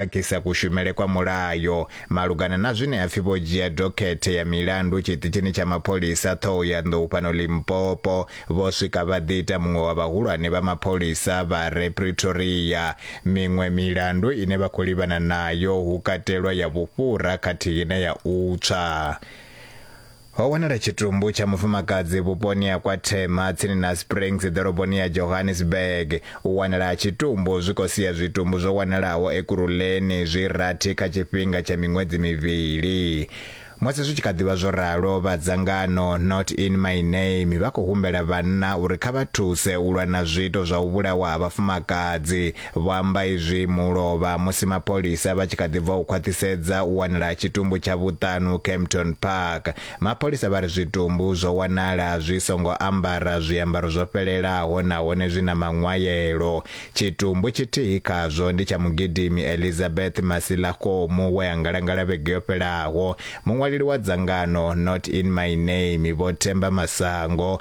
khakhisa kushumele kwa mulayo malugana na zwine ha pfi vho dzhia dokhethe ya milandu tshiṱitshini tsha mapholisa Thohoyandou fhano Limpopo vho swika vha ḓi ita muṅwe wa vhahulwane vha mapholisa vha re Pretoria. Miṅwe milandu ine vha khou livhana nayo hu katelwa ya vhufhura khathihi na ya u tswa. Ho wanala tshitumbu tsha mufumakadzi vhuponi ha kwa Thema tsini na Springs ḓoroboni ya Johannesburg. U wanala ha tshitumbu zwi khou sia zwitumbu zwo wanalaho Ekurhuleni zwi rathi kha tshifhinga tsha miṅwedzi mivhili. Musi zwi tshi kha ḓi vha zwo ralo, vha dzangano Not In My Name vha khou humbela vhanna uri kha vha thuse u lwa na zwiito zwa u vhulawa ha vhafumakadzi Vho amba izwi mulovha musi mapholisa vha tshi kha ḓi bva u khwaṱhisedza u wanala ha tshitumbu tsha vhuṱanu Kempton Park. Mapholisa vha ri zwitumbu zwo wanala zwi songo ambara zwiambaro zwo fhelelaho nahone zwi na maṅwayelo. Tshitumbu tshithihi khazwo ndi tsha mugidimi Elizabeth Masilakgomo we a ngalangala vhege yo fhelaho. Muṅwaleli wa dzangano Not In My Name, Vho Themba Masango,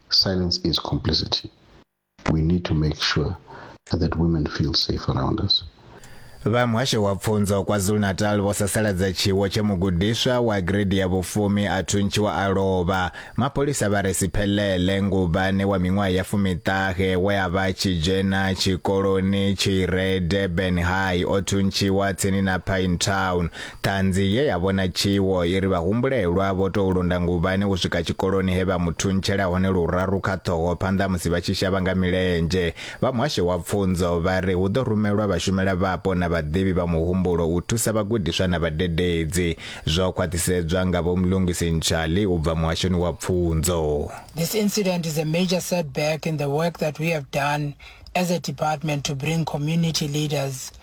Silence is complicity. We need to make sure that women feel safe around us. vha muhasho wa pfunzo kwazulu-natal vho sasaladza tshiwo tshe mugudiswa wa gredi ya vhufumi a thuntshiwa a lovha mapholisa vha re siphelele nguvhane wa miṅwaha ya fumiṱahe we a vha tshi dzhena tshikoloni tshi re durban high o thuntshiwa tsini na pine town Ṱhanzi ye ya vhona tshiwo i ri vhahumbulelwa vho tou londa nguvhani u swika tshikoloni he vha mu thuntshela hone luraru kha ṱhoho phanḓa musi vha tshi shavha nga milenzhe. Vha muhasho wa pfunzo vha ri hu ḓo rumelwa vhashumela vhapo na vhaḓivhi vha muhumbulo u thusa vhagudiswa na vhadededzi. Zwo khwaṱhisedzwa nga Vho Mlungisi Ntshali u bva muhashoni wa pfunzo. This incident is a major setback in the work that we have done as a department to bring community leaders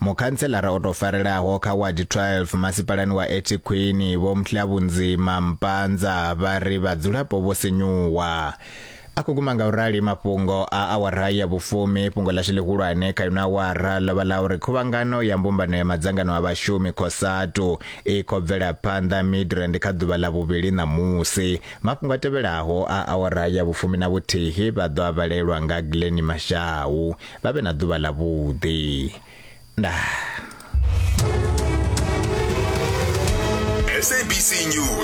Mukhantselara o tou farelaho kha wadi 12 masipalani wa Ethekwini Vho Mhlabunzima Mpanza vha ri vhadzulapo vho sinyuwa. A khou guma nga u rali mafhungo a awara ya vhufumi. Fhungo ḽashu ḽihulwane kha ino awara ḽo vha ḽa uri khuvhangano ya mbumbano ya madzangano a vhashumi Cosatu i khou bvela phanḓa Midrand kha ḓuvha ḽa vhuvhili ṋamusi. Mafhungo a tevhelaho a awara ya vhufumi na vhuthihi vha ḓo a vhalelwa nga Glennie Mashau. vha vhe na ḓuvha ḽa vhuḓi ndaa SABC News